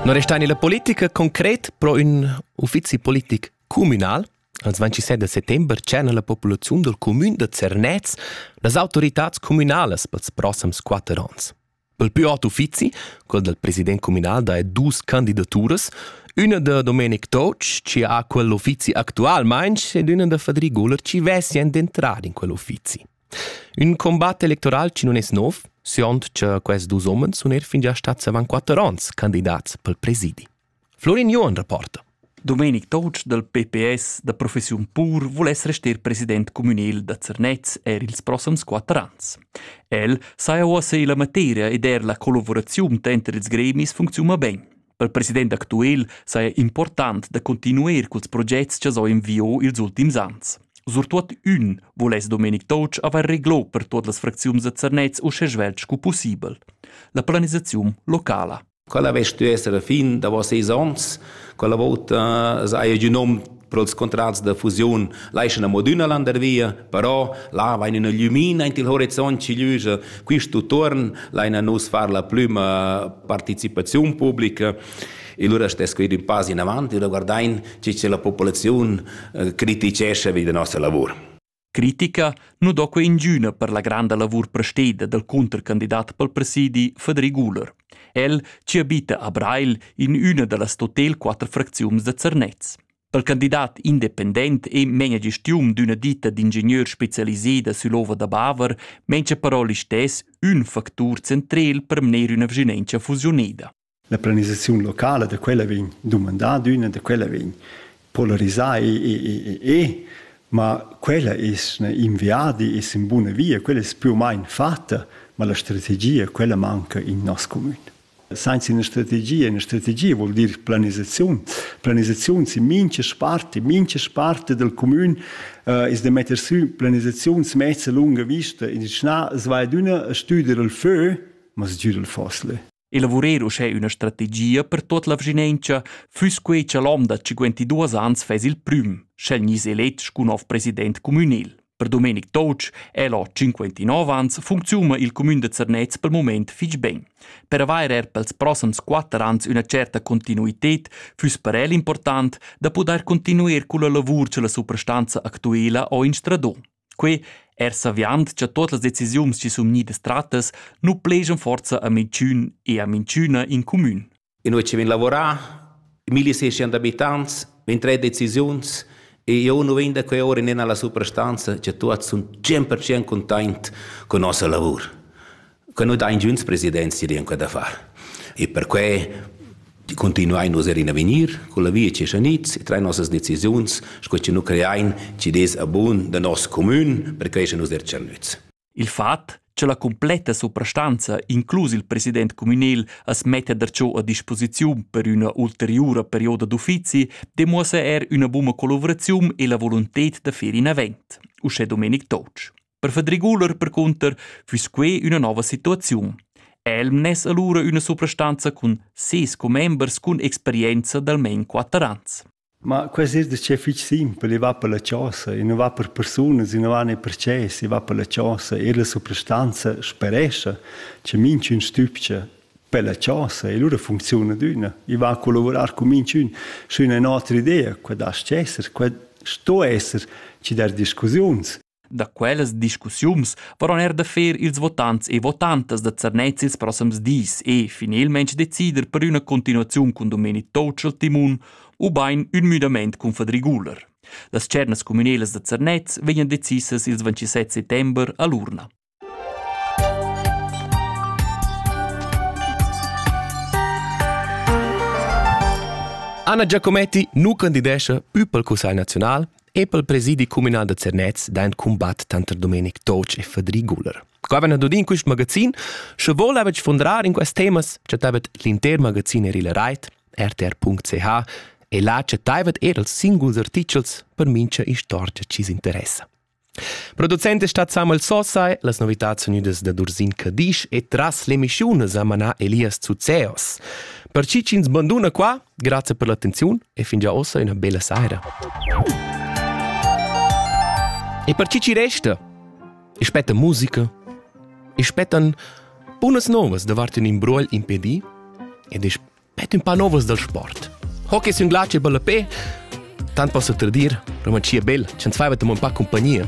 Non resta nella politica concret pro ün uffizi politic communal. Als 27 de settember tschena la populaziun del comün de Zernez las autoritats communalas pels prossams quatter ans. Pel più ot uffizi, quel del president communal da dus candidaturas, una de Domenic Toc, ci ha quell'uffizi actualmente, ed una de Fadri Guller, ci vesien d'entrare in quell'uffizi. Ün combat electoral chi non es nouv, siond cha quests dus homens sun er fingià stats avant quatter ons candidats pel presidi. Florin Johann reporta. Domenic Toutsch dal PPS da professiun pur voless rester president communal da Zernez er ils prossams quatter ans. El saja uossa illa materia ed er la collavuraziun tanter ils gremis funcziuna ben. Pel president actuel saja important da continuer culs progets cha s'ho inviò ils ultims ans. Surtuot ün voless Domenic Toutsch avair reglò per tuot las fracziuns da Zernez uschè svelt scu pussibel. La planisaziun locala. Quella vess stü esser la fin davos seis ons, quella vouta saja giù nom Pro'ls contrats da fusiun laschan amo adüna landar via, però là vain üna glümina aint il horizont chi gliüscha. Quist utuon laina nus far la prüma partecipaziun publica e lura stess que ir ün pass inavant e guardain chi cha la populaziun eh, critichescha vi da nossa lavur. Critica nu do que ingüna per la granda lavur presteda dal cuntercandidat pel presidi Federic Guler. El ci abita a Breil in üna da las totel quatter fracziuns da Zernez. Pel candidat independent e menia gestiun d'üna ditta d'ingenieur specialiseda sül'ova da Baver mengia però listess ün factur centrel per mner üna vigilentia fusioneda. La planisaziun locala da quella vegn dumandada d'üna, da quella vegn polarisà e, e, e, e ma quella es in viadi, es in buna via, quella es più o meno fatta, ma la strategia, quella manca in nos comun. Senza una strategia, una strategia vuol dir planisazione. Planisazione in mincha sparte, mincha sparte del comun eh, es da metter sü planisazione mezza lunga vista in schnà, svai d'una stüder il fö, ma sgür il fossile. Elavurer uschè üna strategia per tuot la vschinentscha füss quei cha l'hom da 52 ans fess il prüm, sch'el gniss elet scu nov president cumünel. Per Domenic Toutsch è lo 59 ans funcziuna il cumün de Zernez pel moment fich ben. Per avair er pels prossams 4 ans üna certa continuited füss per el important da pudair continuer culla lavur cha la suprastanza actuela ho instradò. Quei er saviand cha totas las decisiuns chi sun gnüdas trattas nu plejan forza a minchün e a minchüna in cumün. Inui chi vegn lavorà, 1600 abitants, vegn tre decisiuns e io nu vegn da quei ora nen alla suprastanza, cha tuots sun 100% containt con nossa lavur. che nu dain giunts presidents rir in quella affar. E perquai continuain nus er in avegnir con la via che schaniz e train nossas decisiuns sco che nu creain ci des a bun da nos comün per cresce nus der tschernüz. Il fat che la completa suprastanza, inclus il president communal, as metta darciò a disposiziun per üna ulteriura perioda d'uffizi, demuossa er üna buna collaboraziun e la volunted da fer in avant, uschè Domenic Totsch. Per Fedriguler percunter füss quei üna nova situaziun. El mness allura üna suprastanza cun ses commembers cun experienza d'almain quatter ans. Ma quest es das fich simpel, i va per la chosa, i nu va per persunas, i nu va ne per ces, i va per la chosa e la suprastanza sperescha che minchün stübcha per la chosa e lura funcziuna d'üna. I va a collavurar con minchün su üna otra idea, quella das esser, quella sto esser ci dar discussiuns. Da quellas discussiuns varon er da fer ils votants e votantas da Zernez ils proxims dis e finalmente decider per üna continuaziun cun domeni Totschel Timun ubain ün müdament cun Fadriguler. Las tschernas communelas da Zernez vegnan decisas ils 27 settember a l'urna. Anna Giacometti nu candidescha pü pel Cussagl naziunal e pel presidi cumünal da Zernez daint cumbat tanter Domenic Toc e Fadri Guler. Qua vain dad in quist magazin, sche voul avech fundrar in quest temas, chattavet l'inter magazin er il rait rtr.ch e là chattaivet er els singuls artichels per mincha istorgia chi's interessa. Producent è stat Samuel Sossai, las novitads unidas da Dursin Cadisch e tras l'emissiun sa manà Elias Zuzeos. Per chi ch'ins banduna qua, grazie per l'attenziun e fin già ossa una bella saira. E per chi ci resta? E spetta musica, e spettan bunas novas davart un imbruogl impedì ed Pet ün pa novas dal sport. Hockey es ün glatsch e ballapè, tant possa tradir, ma chia bel, ch'ans faiva amo ün pa cumpagnia.